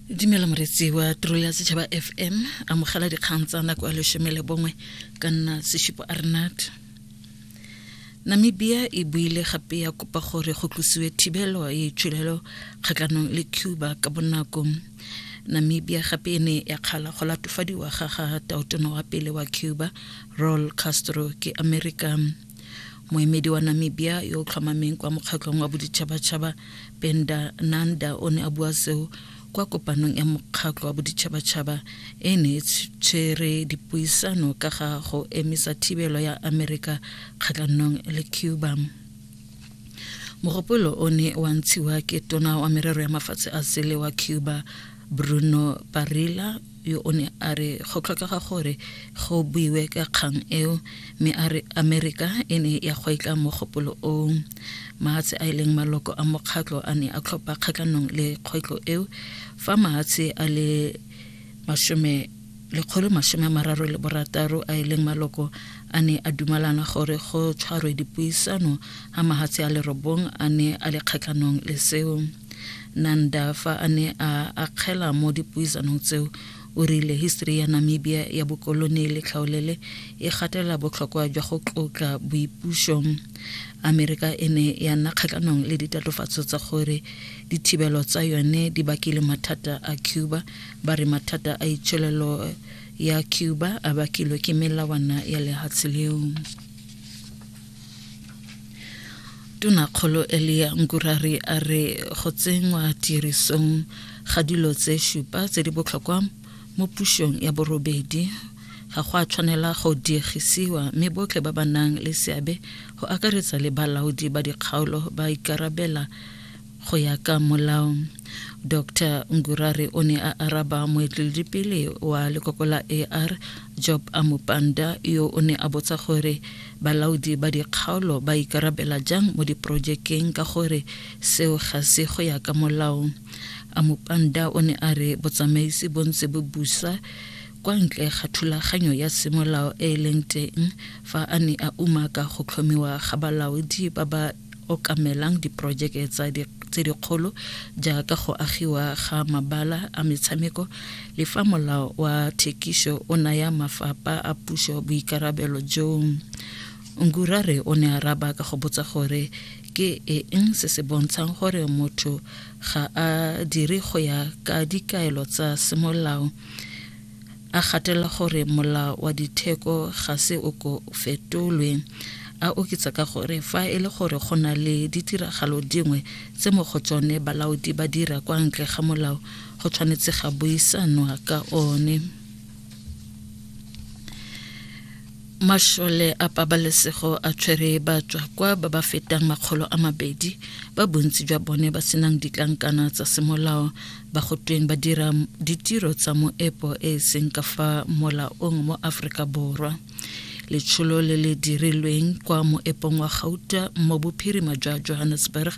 dumela moretsi wa tiro ya setšhaba fm amogela dikgang tsa nako ya lesome le bongwe ka nna seshipo arnat namibia e buile gape ya kopa gore go tlosiwe thibelo e tshulelo kgatlhanong le cuba ka bonako namibia gape e ne ya kgala go latofadiwa ga ga taotono wa pele wa cuba roll castro ke america moemedi wa namibia yo o tlhomameng kwa mokgatlhong wa boditšhabatšhaba penda nanda o ne a bua seo kwa kopanong ya mokgatlho wa boditšhabatšhaba e ne e tshwere dipuisano ka ga go emisa thibelo ya amerika kgatlhanong le cuba mogopolo o ne wa ntshiwa ke tona wa merero ya mafatshe a sele wa cuba bruno parilla yo o ne a re go tlhokega gore go buiwe ka kgang eo mme a re amerika e ne ya gweetla mogopolo oo mahatshe a e leng maloko a mokgatlho a ne a tlhopha kgatlhanong le kgwetlho eo fa mahatshe a le masome lekgolo masome a mararo le borataro a e leng maloko a ne a dumalana gore go tshwarwe dipuisano ga mahatshe a lerobong a ne a le kgatlhanong le seo Nanda fa a ne a akgela mo dipuisanong tseo o rile history ya Namibia ya bokolone le tlhaolele e gatelela botlhokwa jwa go tlotla boipuso. Amerika e ne ya nna kgatlhanong le ditatofatso tsa gore dithibelo tsa yone di bakile mathata a Cuba, ba re mathata a itsholelo ya Cuba a bakilwe ke melawana ya lehatshe leo. tonakgolo elia nkurari a re go tsenngwa tirisong ga dilo tse šupa tse di botlhokwa mo pušong ya borobedi ga go a tshwanela go diegisiwa mme botlhe ba ba nang le seabe go akaretsa le balaodi ba dikgaolo ba ikarabela Go ya ka molao, Dr Ngurare o ne a araba moeteledipele wa lekoko la AR Job Amupanda yo o ne a botsa gore balaodi ba dikgaolo ba ikarabela jang mo diporojekeng ka gore seo ga se go ya ka molao. Amupanda o ne a re botsamaisi bo ntse bo busa kwa ntle ga thulaganyo ya semolao e e leng teng fa a ne a umaka go tlhomiwa ga balaodi ba ba okamelang diporojeke tsa di, tse dikgolo jaaka go agiwa ga mabala a metshameko le fa molao wa thekiso o naya mafapha a puso boikarabelo joo ngurare o ne a raba ka go botsa gore ke eng se se bontshang gore motho ga a dire go ya ka dikaelo tsa semolao A gatela gore molao wa ditheko ga se o ko fetolwe. A oketsa ka gore fa e le gore go na le ditiragalo dingwe tse mo go tsone balaodi ba dira kwa ntle ga molao go tshwanetse ga buisanwa ka one. Mashole a pabalesego a tshwere batswakwa ba ba fetang makgolo a mabedi ba bontsi jwa bone ba senang ditlankana tsa semolao ba go tweng ba dira ditiro tsa moepo e e seng ka fa molaong mo aforika borwa letsholo le le dirilweng kwa moepong wa gauta mo bophirima jwa johannesburg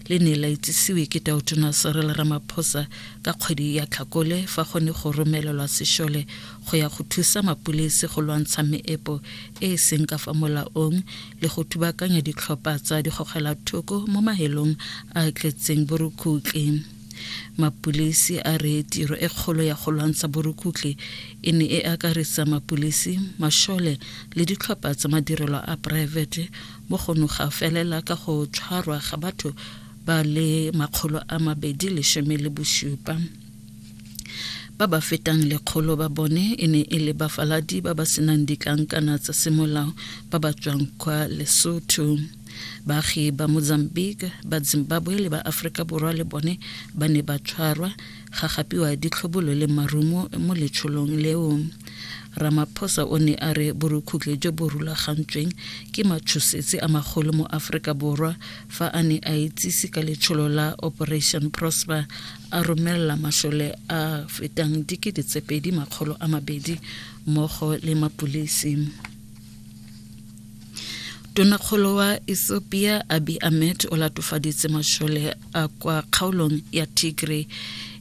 le ne la itsisiwe ke taotona serel ramaphosa ka kgwedi ya tlhakole fa go ne go romelelwa sešole go ya go thusa mapolese go lwantsha meepo e e seng ka fa molaong le go thubakanya ditlhopha tsa digogela thoko mo mahelong a tletseng borukutleng mapulisi a re tiro e kgolo ya go lwantsha borukutlhi e ne e akaretsa mapulisi mashole le ditlhopha tsa madirelo a poraefete mo go noga felela ka go tshwarwa ga batho ba le makgolo a mabedi leshome le bosupa ba ba fetang lekgolo ba bone e ne e le bafaladi ba ba senang ditlankana tsa semolao ba ba tswang kwa lesotho Baagi ba Mozambique, ba Zimbabwe le ba Aforika Borwa le bone ba ne ba tshwarwa ga gapiwa ditlhobolo le marumo mo letsholong leo. Ramaphosa o ne a re borukhutlhe jo bo rulagantsweng ke matshosetsi a magolo mo Aforika Borwa fa a ne a itsise ka letsholo la Operation Prosper a romelela masole a fetang dikete tse pedi makgolo a mabedi mmogo le mapulisi. Tonakgolo wa Ethiopia Abiy Ahmed o latofaditse mashole a kwa kgaolong ya Tigray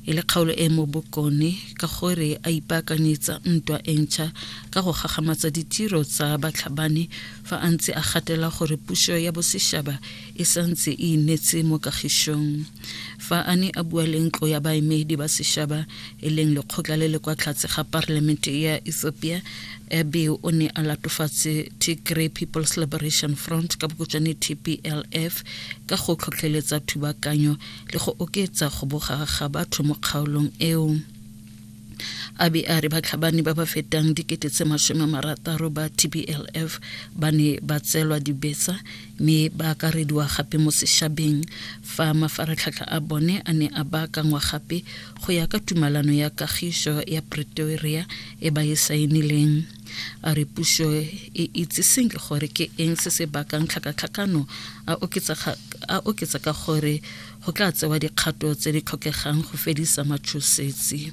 e le kgaolo e mo bokone ka gore a ipaakanyetsa ntwa e ntšha ka go gagamatsa ditiro tsa batlhabani fa a ntse a gatela gore puso ya bosešaba e santse e inetse mo kagišong fa a ne a bua le ntlo ya baemedi ba sešaba e leng lekgotla le le kwa tlhatse ga parliamente ya ethiopia ebe o ne a latofatse tigray people's liberation front ka bokotšwane tplf ka go tlhotlheletsa thubakanyo le go oketsa go boga ga batho mo kgaolong eo a be a re batlhabani ba ba fetang dikete tse masome marataro ba tblf ba ne ba tseelwa dibetsa mme ba akarediwa gape mo sešabeng fa mafaratlhatlha a bone a ne a baakangwa gape go ya ka tumalano ya kagišo ya pretoria e ba e saenileng a re puso e itse senke gore ke eng se se bakang tlhakatlhakano a oketsa ka gore Go tla tsewa dikgato tse di tlhokegang go fedisa matshosetsi.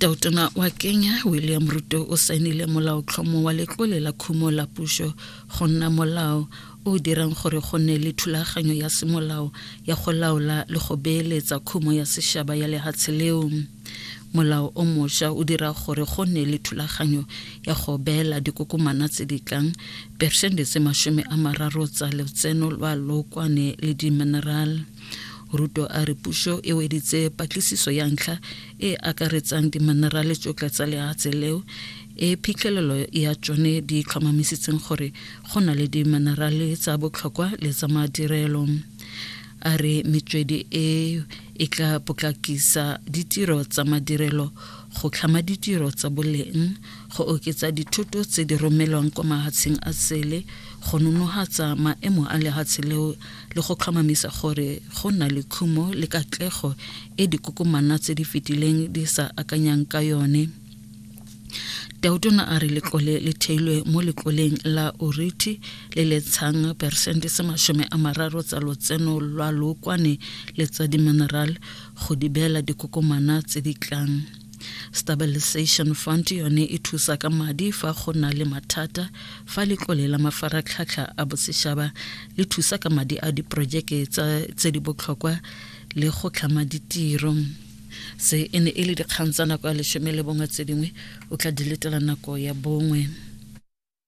Tautona wa Kenya William Ruto o saenile molaotlhomo wa letlole la khumo la puso go nna molao o dirang gore go nne le thulaganyo ya semolao ya go laola le go beeletsa khumo ya sešaba ya lehatshe leo. Molao o mosha o dira gore go nne le thulaganyo ya go beela dikokomana tse di tlang persente tse masome a mararo tsa lotseno lwa lookwane le dimineral. Ruto a re puso e weditse patlisiso ya ntlha e akaretsang diminerale tsotlhe tsa leatshe leo e phitlhelelo ya tsone di tlhomamisitseng gore go na le diminerale tsa botlhokwa le tsa madirelo a re metswedi e e tla potlakisa ditiro tsa madirelo go tlhama ditiro tsa boleng go oketsa dithoto tse di romelwang kwa mahatsheng a sele go nonogatsa maemo a lehatshe leo le go tlhomamisa gore go na le khumo le katlego e dikokomana tse di fetileng di sa akanyang ka yone Tautona a re letlole le theilwe mo letloleng la Oriti le le tshang peresente se masome a mararo tsa lotseno lwa lookwane le tsa dimineral go di beela dikokomana tse di tlang. Stabilization Fund yone e thusa ka madi fa go na le mathata fa letlole la mafaratlhatlha a bosešaba le thusa ka madi a diporojeke tse di botlhokwa le go tlhama ditiro. se e ne e le dikgang tsa nako ya lesome le bongwe tse dingwe o tla diletela nako ya bongwe